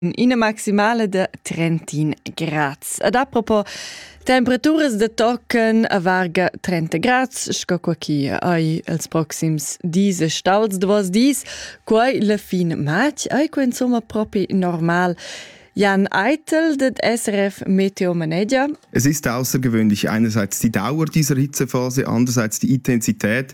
ina maximala da 31 grads. Ad apropos temperaturas da tochen a varga 30 grads, sco qua chi ai els proxims dis e stals de vos dis, quai la fin matg, ai qua insomma propi normal. Jan Eitel, det SRF Meteo Manager. Es ist außergewöhnlich einerseits die Dauer dieser Hitzephase, andererseits die Intensität.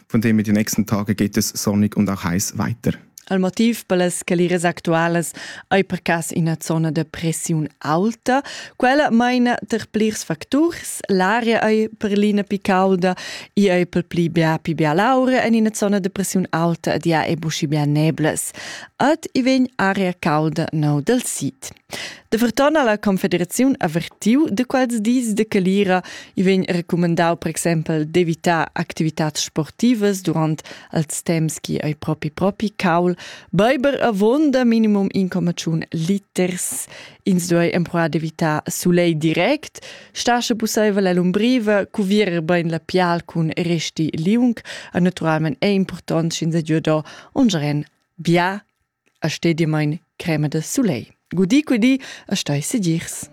Von dem in den nächsten Tagen geht es sonnig und auch heiß weiter. Al motiv per las caliras actualas ei per cas ina zona de pressiun alta. Quella meina ter plirs facturs. L'aria ei per l'ina pi calda, i ei per pli bia pi bia laura en ina zona de pressiun alta ed ja ei buschi bia neblas. Ad i vegn aria calda neu del sid. Da Verton ha la Confederaziun avertiu da quels dis de calira. I vegn recumandau per exempel d'evitar activitads sportivas durant els temps che ei propi propi caul. Beiber avonda minimum 1,1 liters. Ins duei empruar d'evitar sulei direct. Stasche pusseivel ell'umbriva, cuvierer bein la pial cun resti liung. E naturalmein è important sch'ins ei giudo un geren bia a stedimain crema da sulegl. Gudi, gudi, a stai segirs.